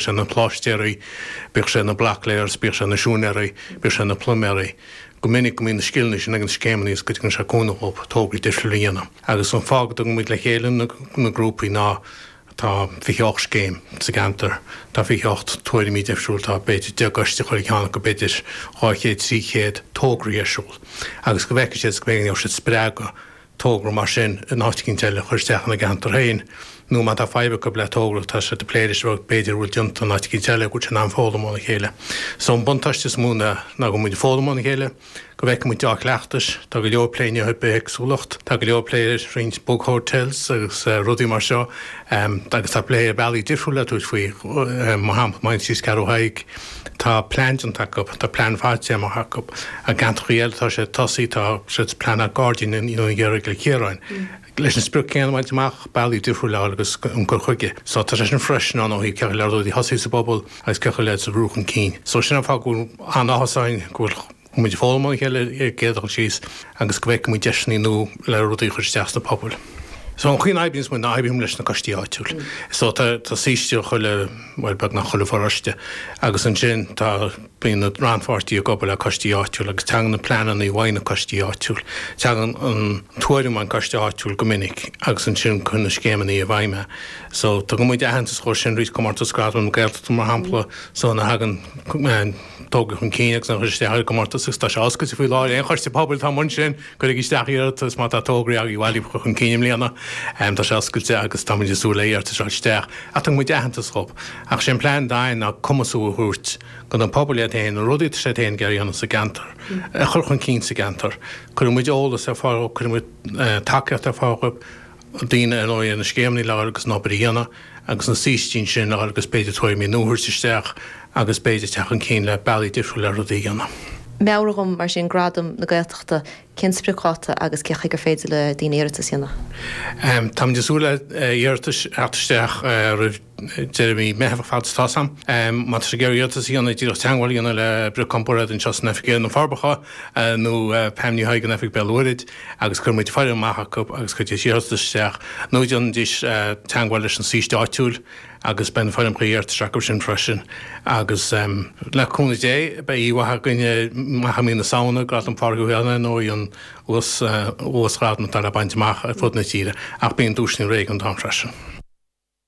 sé na pláistéaraí, bíodh sé na blocklayers, bíodh sé na siúinéaraí, bíodh sé na pluiméaraí. Go minic go mbíonn na scileanna sin ag na scéimeanna agus go dtugann sé cúnamh dhóibh tógáil difriúil a dhéanamh. Agus an fáth go dtugann muid le chéile na grúpaí ná tá fiche hocht scéim sa gceantar, tá fiche hocht tuairimí difriúil, tá b'fhéidir deich gcoiste ag chaon cheann acu, b'fhéidir dhá chéad, trí chéad tograí ar siúl. Agus go bhfeiceann siad is go bhféiceann go gheibh siad spreagadh togra mar sin in áit eicínt eile a chur isteach ina gceantar féin. Nó má tá fadhb acu le togra, tá sé á phlé, rud, b'fhéidir, a bhfuil déanta in áit eicínt eile, go bhfuil siad in ann foghlaim óna chéile. So an buntáiste is mó ná ná go bhfuil muid ag foghlaim óna chéile, go bhfeiceann muid dea-chleachtais, tá go leor plé anois ar bithéagsúlacht, tá go leor plé ar roinnt bug hotels agus rudaí mar seo agus tá plé ar bealaí difriúla a tabhairt faoi, mar shampla, mar thíos i g Ceathrú Thaidhg, Tá plean déanta acu, tá plean fadtéarmach acu. I gceantracha eile tá sé tosaí, tá siad ag pleanáil gairdín i nDún Gheadhra i gCill Chiaráin leis an sprioc céanna a bhaint amach, bealaí difriúla ar fáil agus an cur chuige. So tá sé sin freisin ann ó thaobh cén chaoi le rudaí a thosú sa bpobal agus cén chaoi lena mbrú chun cinn. So sin an fáth go bhfuil an-áthas orainn go bhfuil, Bhí muid ag foghlaim óna chéile ar céard atá ag dul síos agus go bhfeicfidh muid deiseanna nua le rudaí a chur isteach sna pobail. So an chaoi a n-oibríonns muid ná oibríonn muid leis na coistí áitiúil. So tá saoiste i chuile, bhuel beagnach chuile pharóiste agus ansin tá, bíonn na rannpháirtithe ag obair le coistí áitiúil agus tagann na pleananna i bhfeidhm ó na coistí áitiúil. Tagann an tuairim ón coiste áitiúil go minic agus ansin cuireann na scéimeanna i bhfeidhm é. So tugann muid aitheantas dhóibh sin, Comórtas Gradam na Gaeltachta mar shampla, so má thagann, Tograí chun cinn agus an chuid isteach ar an gcomórtas agus tá sé oscailte faoi láthair. Aon choiste pobail atá amuigh ansin, cuirigí isteach iarratas má tá togra agaibh a tháinig chun cinn i mbliana. Tá sé oscailte agus tá muid ag súil le iarratais a fháil isteach. Ach tugann muid aitheantas dhóibh. Ach is é an plean deiridh ná cumasú a thabhairt don phobal iad féin, an rud atá siad féin ag iarraidh a dhéanamh sa gceantar, a chur chun cinn sa gceantar. Cuireann muid eolas ar fáil dhóibh, cuireann muid tacaíocht ar fáil dhóibh daoine ar ndóigh ar na scéimeanna ar fáil leis an obair a dhéanamh agus na saoistí ansin ar fáil agus b'fhéidir tuairimí nua a thabhairt isteach agus b'fhéidir teacht chun cinn le bealaí difriúil le rudaí a dhéanamh. Meabhraigh dom mar sin Gradam na Gaeltachta, cén spriocdháta agus cén chaoi ar féidir le daoine iarratas a dhéanamh? Táimid ag súil le hiarratais a theacht isteach roimh. deireadh mhí Meitheamh fad is atá siad amuigh atá ag iarraidh iarratas a dhéanamh ach díreach teagmháil a dhéanamh le Brioc Comparáid anseo san oifig ar na Forbacha nó Pam Ní Thaidhg in oifig Bhéal an Mhuirthead agus cuirfidh muid foirm amach acu agus cuirfidís iarratas isteach nó déanfaidís teagmháil leis an saoiste áitiúil agus beidh an foirm chuí iarratais acu sin freisin agus le cúnamh Dé beidh oíche mhaith againn i mbliana mí na Samhna Gradam Phádraig Uí Chonghaile an t-uasghradam atá le baint amach ar fud na tíre ach bíonn duaiseanna réigiúnach ann freisin.